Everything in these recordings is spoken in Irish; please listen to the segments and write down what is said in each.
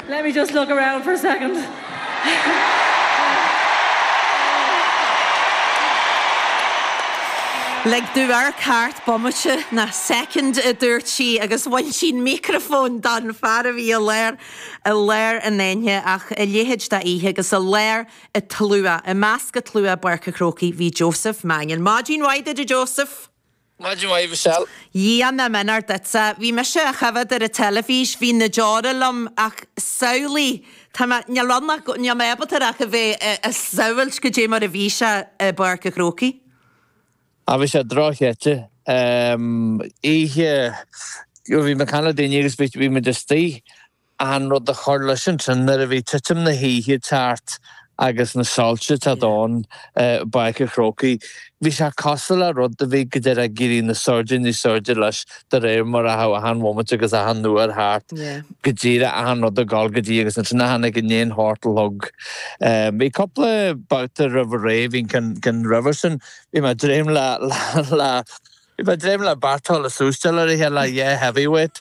Let me just look around for a second. Lig domh amharc thart bomaite, nó soicind, a dúirt sí agus bhain sí an mícreafón den fhear a bhí i lár i lár an aonaigh ach a leithéid d'oíche agus i lár an tslua. I measc an tslua i bPáirc an Chrócaigh bhí Joseph Mannion. Maidin mhaith duit a Joseph! Maith thú, a Mhichelle. Móra na maidine duitse. Bhí mise ag coimhéad ar an teilifís, bhí na deora liom ach samhlaigh, tá mé, níl rud nach, níl mé ábalta ar ach a bheith ag samhailt goidé mar a bhí sé i bPáirc a' Chrócaigh. Á bhí sé dochreidte. Oíche, bhí mé ag caint le daoine agus bhí muid istoigh. achan rud ag cur leis ansin nuair a bhí titim na hoíche thart agus na soilse ag teacht ann i bPáirc an Chrócaigh. Bhí sé cosúil le rud a bhí go díreach ag éirí níos airde níos airde leis de réir mar a théadh achan mhóimint agus achan uair thart, go díreach achan rud ag dul go dtí agus ansin char tháinig in aon sórt log. Bhí cúpla babhta roimh ré a bhí cinn roimhe sin, bhí mé ag dréim le, le, bhí mé ag dréim le beirt ag súisteáil ar a chéile, le dhá heavyweight.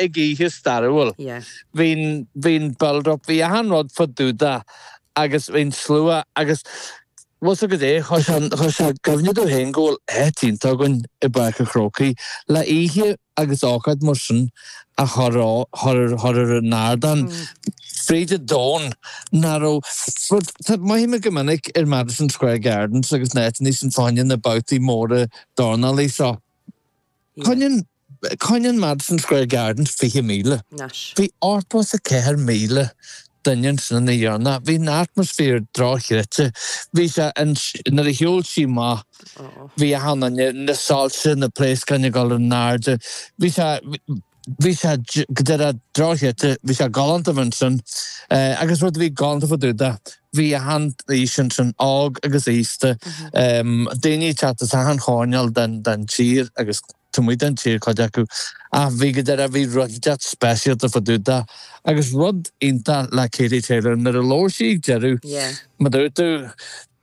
ag oíche stairiúil. Bhí'n build up, bhí achan rud fá dtaobh de agus bhí'n slua agus bhuel is dóigh gur chuir sé i gcuimhne dúinn féin go bhfuil áit iontach againn i bPáirc a' Chrócaigh le oíche agus ócáid mar sin a chur chur ar an ardán fríd an domhan nó go raibh rud, maíodh muid go minic ar Madison Square Gardens agus na háiteannaí sin fá choinne na babhtaí móra dornálaí seo choinneann Coinníonn Madison Square Garden 20,000. nais. Bhí os cionn 4,000 duine sna na dhéarna. Bhí an atmaisféar dochreidte. Bhí sé an nuair a shiúil sí amach, bhí ann an na soilse, na pléascáin ag dul in airde. Bhí sé bhí sé go díreach dochreidte. Bhí sé galánta bheith ansin agus rud a bhí galánta fá dtaobh de, bhí achan aois ansin, óg agus aosta, daoine ag teacht as achan choirnéal den den tír agus. Taobh amuigh den tír cuid acu ach bhí go díreach bhí rud deas speisialta fá dtaobh de agus rud iontach le Katie Taylor nuair a labhair sí ag deireadh Yeah. mar a dúirt tú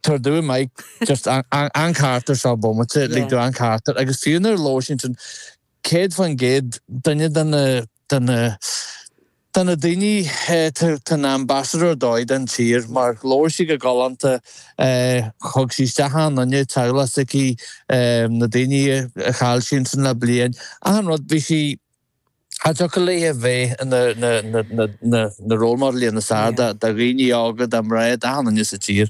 tabhair dúinn mic just an an carachtar seo bomaite lig Yeah. tú an carachtar agus fiú nuair a labhair sí ansin céad faoin gcéad duine de na de na Tá na daoine, tá ina ambasadóir dóibh don tír mar labhair sí go galánta, thug sí isteach achan duine i dteaghlach s'aici, na daoine a chaill sí ansin le bliain, achan rud, bhí sí, cha dtiocfadh léi a bheith ina, na, na, na, na role model, níos fearr do dhaoine óga, do mhná, d'achan duine sa tír.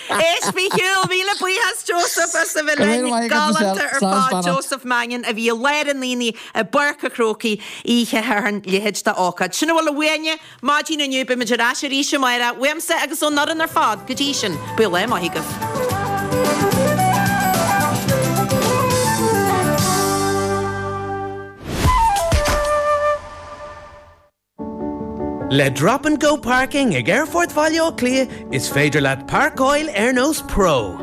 Éist, bhí sé cool! Míle buíochas Joseph as a bheith linn. Go raibh maith agat, Michelle. Galánta ar fad. Slán, beannacht. Joseph Mannion a bhí i lár an aonaigh i bPáirc a' Chrócaigh oíche Shathairn, leithéid d'ócáid. Sin a bhfuil uainne maidin inniu, beimid ar ais arís amáireach, uaimse agus ón fhoireann ar fad. Go dtí sin, bíodh lá maith agaibh. Le Drop and Go Parking ag Aerfort Bhaile Átha Cliath is féidir leat parcáil ar nós pro.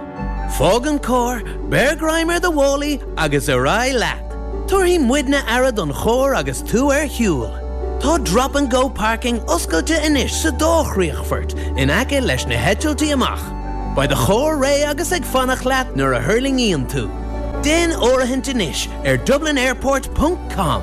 Fág an carr, beir greim ar do mhálaí agus ar aghaidh leat. Tabharfaidh muidne aire don charr agus tú ar shiúl. Tá Drop and Go Parking oscailte anois sa dá chríochfort in aice leis na heitiltí amach. Beidh do charr réidh agus ag fanacht leat nuair a thuirlingíonn tú. Déan áirithint anois ar dublinairport ponc com.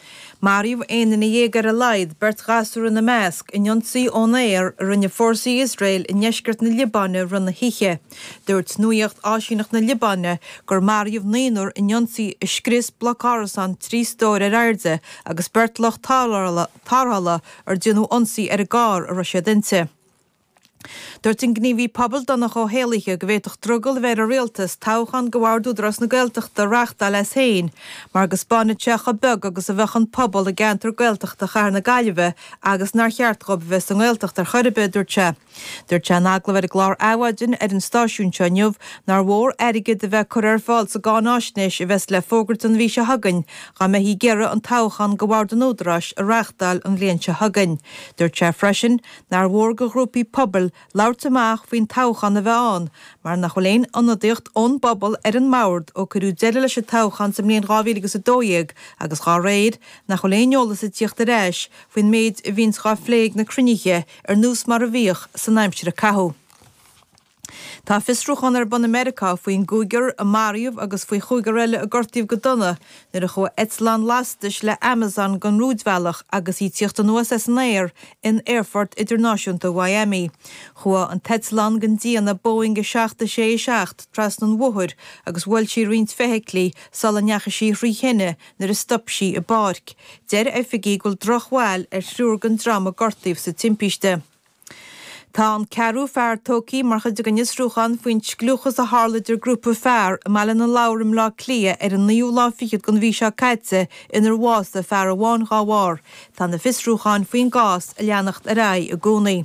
Maraíodh 11 duine ar a laghad, beirt ghasúr ina measc, in ionsaí ón aer a rinne fórsaí Iosrael i ndeisceart na Liobáine i rith na hoíche. Dúirt nuaíocht áisíneacht na Liobáine gur maraíodh naonúr in ionsaí a scrios bloc árasán trí stór ar airde agus beirt lucht tarrthála ar déanadh ionsaí ar an gcarr a raibh siad inti. Dúirt an gníomhaí pobail Donncha Ó hÉallaithe go bhféadfadh drogall a bheith ar an Rialtas toghchán do bhord Údarás na Gaeltachta a reáchtáil as féin mar go spáinfeadh sé chomh beag agus a bheadh an pobal i gceantar Gaeltachta chathair na Gaillimhe agus nár cheart dhóibh a bheith sa nGaeltacht ar chor ar bith, a dúirt sé. Dúirt sé in agallamh ar an gclár Adhmhaidin ar an stáisiún seo inniu nár mhór airgead a bheith curtha ar fáil sa gcáináisnéis a bheas le fógairt an mhí seo chugainn dá mbeifí ag iarraidh an toghchán do bhord an Údaráis a reáchtáil an bhliain seo chugainn. Dúirt sé freisin Nár mhór do ghrúpaí pobail labhairt amach faoin toghchán a bheith ann mar nach bhfuil aon ionadaíocht ón bpobal ar an mbord ó cuireadh deireadh leis an toghchán sa mbliain 2012 agus dá réir, nach bhfuil aon eolas ag tíocht ar ais faoin méid a bhíonns dhá phlé ag na cruinnithe ar nós mar a bhíodh san aimsir a caitheadh. Tá fiosrúchán ar bun i Meiriceá faoin gcúigear a maraíodh agus faoi chúigear eile a gortaíodh go dona nuair a chuaigh eitleán lastais le Amazon den rúidbhealach agus í ag tíocht anuas as an aer in Aerfort Idirnáisiúnta Mhiami. Chuaigh an t-eitleán den déanamh Boeing 767 trasna an bhóthair agus bhuail sí roinnt feithiclí sula ndeachaigh sí thrí thine nuair a stop sí i bpáirc. Deir oifigigh go bhfuil drochbhail ar thriúr den dream a gortaíodh sa timpiste. Tá an ceathrú fear tógtha mar chuid den fhiosrúchán faoin scliúchas a tharla idir grúpa fear i mBaile na Lobhar i mBleá Cliath ar an naoú lá fichead den mhí seo caite inar bhásaigh fear amháin dá bharr. Tá na fiosrúcháin faoin gcás ag leanacht ar aghaidh i gcónaí.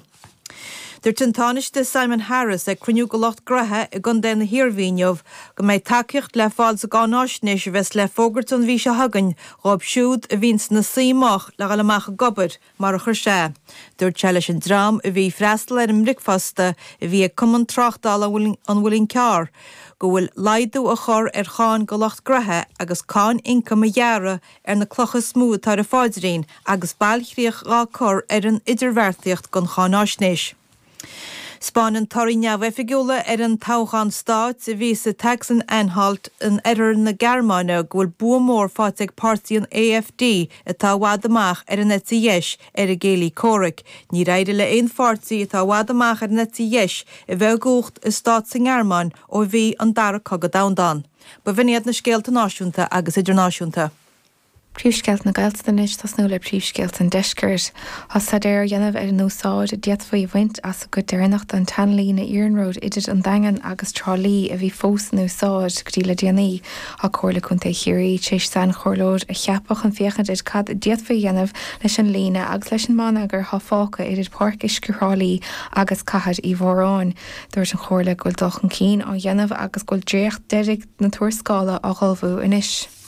Dúirt an Tánaiste Simon Harris ag cruinniú de lucht graithe i gContae na hIarmhí inniu go mbeidh tacaíocht le fáil sa gcáináisnéis a bheas le fógairt an mhí seo chugainn dhóibh siúd a bhíonn sna suí moch le dhul amach ag obair mar a chuir sé. Dúirt sé leis an dream a bhí ag freastal ar an mbricfeasta a bhí ag Cumann Tráchtála an Mhuilinn Chearr go bhfuil laghdú a chur ar cháin do lucht graithe agus cáin ioncaim a ghearradh ar na clocha is mó atá ar a pháidrín agus bailchríoch dhá cur ar an idirbheartaíocht don cháinaisnéis. 'Spáineann torthaí neamhoifigiúla ón toghchán stáit a bhí sa tSacsan-Anhalt in oirthear na Gearmáine go bhfuil bua mór faighte ag páirtí an AfD atá i bhfad amach ar an eite dheis ar a gcéilí comhraic. Níor éirigh le haon pháirtí atá i bhfad amach ar an eite dheis a bheith i gcumhacht i stát sa nGearmáin ó bhí an Dara Cogadh Domhanda ann. B'in iad na scéalta náisiúnta agus idirnáisiúnta. Príomhscéalta na Gaeltachta anois, tosnú le príomhscéalta an Deiscirt. Tá staidéar á dhéanamh ar an úsáid a d'fhéadfaí a bhaint as an gcuid deireanach den tseanlíne iarnróid idir an Daingean agus Trá Lí a bhí fós in úsáid go dtí le déanaí. Tá Comhairle Contae Chiarraí tar éis sainchomhairleoir a cheapadh chun féachaint ar cad a d'fhéadfaí a dhéanamh leis an líne agus leis an mbonneagar atá fágtha idir Páirc Uisce Thrá Lí agus Cathair Uí Mhóráin. Dúirt an Chomhairle go bhfuil dul chun cinn á dhéanamh agus go bhfuil dréacht deireanach na tuarascála á hullmhú anois.